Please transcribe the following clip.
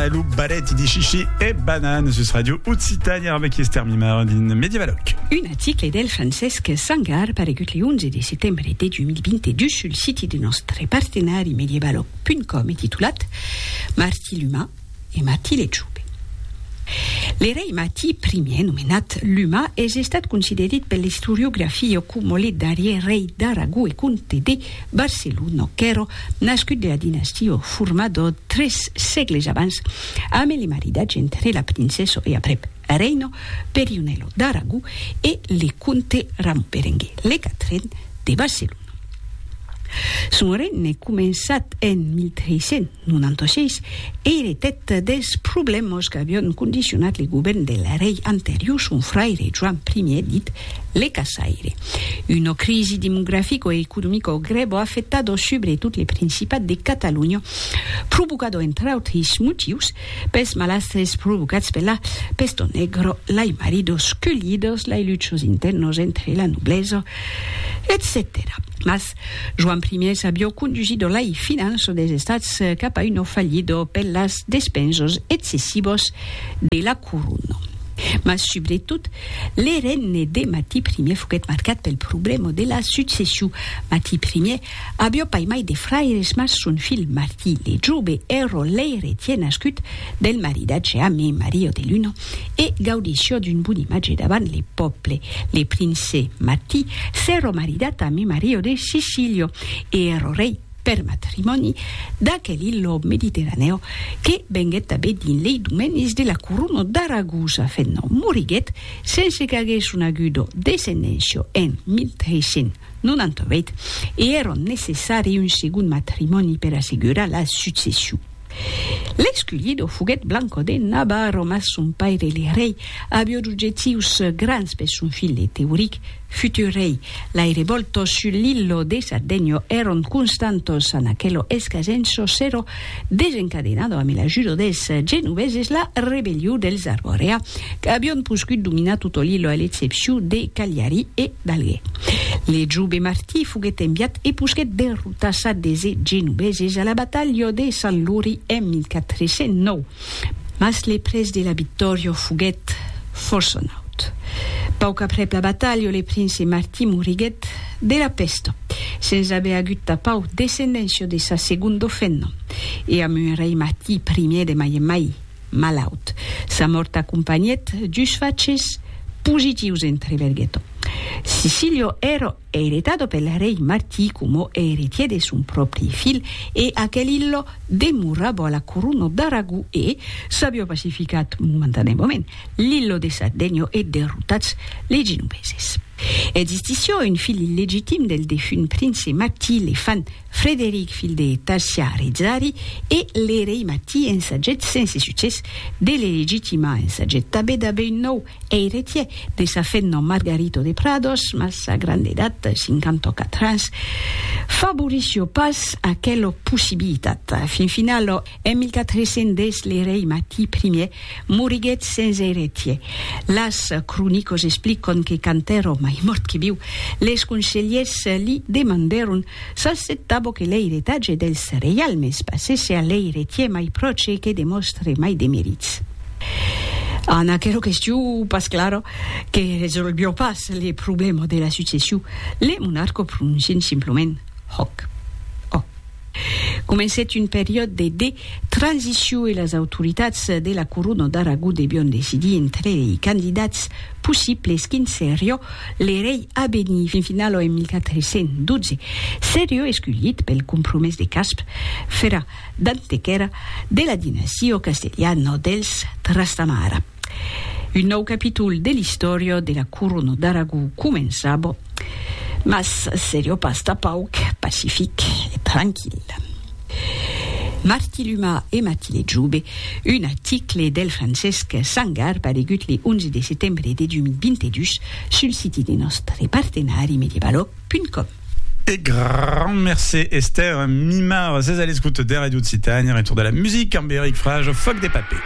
A lo baret de Chichi e Banane sus Radio Occitània arbe qui Esther Mimar din Medievaloc. Un article del Francesc Sangar paregut le 11 de setembre de 2022 sul siti de nòstre partenari medievaloc.com e titulat Martí l'Umà e Martí l'Etjove. Le rei Martí Ier, nomenat l'Umà, es estat considerit per l'istoriografia coma le darrièr rei d'Aragó e comte de Barcelono qu'èro nascut de la dinastia formado tres sègles abans ame le maridatge entre la princèso e aprèp reino Perionelo d'Aragó e le comte Ramon Berenguer le quatren de Barcelono. Son regne començat en 1300. Non antochèis ère eth des problèmas qu'avion condicionat le govèrn del rei anterior, son fraire Joan Ier, dit le Caçaire. Una crisi demografica e economica grèva afectador subretot le Principat de Catalonha, provocada entre autris motius pes malastres provocats per la Pèsto Negra, lei maridos culhidas, lei luchas intèrnas entre la noblesa, etcetèra. Mas Joan Ier s'avió condusido lai finanço des Estats cap a uno fallido per las despensos excessivos de la Corona. Mas subretot, le regne de Mati Ier foguèt marcat pel problèma de la succession. Mati Ier avió pas mai de fraires mas son filh Martí le Jove, ero l'eiretier nascut del maridatge ame Maria de Luna, e gaudisciò d'un bon imatge davant le pòble. Le prince Matti s'èro maridat a Mimario de Sicilio e èro rei per matrimòni d'aquel illo mediterranèo que venguèt tanben dins lei domenis de la corona d'Aragosa fent nom. Moriguèt sense qu'aguèsse conegudo descendençio en 1398 e èro necessari un segond matrimòni per assegurar la succession. L'esculido foguèt Blanco de Navarro, mas son paire le rei avió d'objectius grands per son filh Teuric, futur rei. Lai revòltos sus l'illo de Sardegno èron constantos, an aquelo escasenço s'èro desencadenado ambe l'ajudo dels genoveses la rebelliu dels Arborea, qu'avión poscut dominar toto l'illo a l'excepciu de Cagliari e d'Alger. Le jove Martí foguèt enviat e posquèt derrotat. Passat de se genobeses a la batalha de Sant Luri en 1409, mas le prètz de la victòria foguèt fòrça naut. Pauc aprèp la batalha le prince Martí moriguèt de la pèsta, sens aver agut tapau descendéncia de sa segonda femna, e amb un rei Martí I de mai en mai malaut. Sa mòrt acompanhèt dus faches positius entre Berghetto. Sicília èra Eretado pel rei Martí coma eretier de son pròpri filh e aquel illo demorabo a la corona d'Aragó e, s'avió pacificat momentaneamament l'illo de Sardegno e derrotats les genoveses. Existissió un filh illegitim del defunt prince Martí, le fan Frederic filh de Tarsià Rizzari e le rei Martí ensaget sense succès de le legitimar, ensaget tanben d'aver un nòu Eiretier de sa fenna Margarito de Prados, mas sa granda edat, 54 ans, favorissió pas aquela possibilitat. Fin finala, en 1410, le rei Mati I moriguèt sens eiretier. Las cronicas explican que quand èra mai mòrt que viu, les conselhers li demandèron s'acceptava que l'eiretatge dels reialmes passèsse a l'eiretier mai pròche e que demòstre mai de merits. En aquera question, pas clara, que resolvió pas le problèma de la succession, le monarca prononcèt simplament Hoc. Ò. Comencèt un periòde de de transition e las autoritats de la corona d'Aragó devián decidir entre lei candidats possibles quin serió le rei a venir. Fin finala, en 1412, serió esculhit pel compromés de Casp, fera D'antequèra, de la dinasio castelhano dels Trastamara. Un nòu capítol de l'istòria de la corona d'Aragó començava, mas seriá pas tà pauc pacific e tranquil. Martiluma e Matile Jobe, un article del Francesc Sangar paregut le 11 de setembre de 2022 sul siti de nòstre partenari Medievalog, www.radioccitania.com. E grand mercé Esther Mimar, ses a l'escoute de Radio Occitània, retour de la musique amb Eric Frage, Fòc de papé.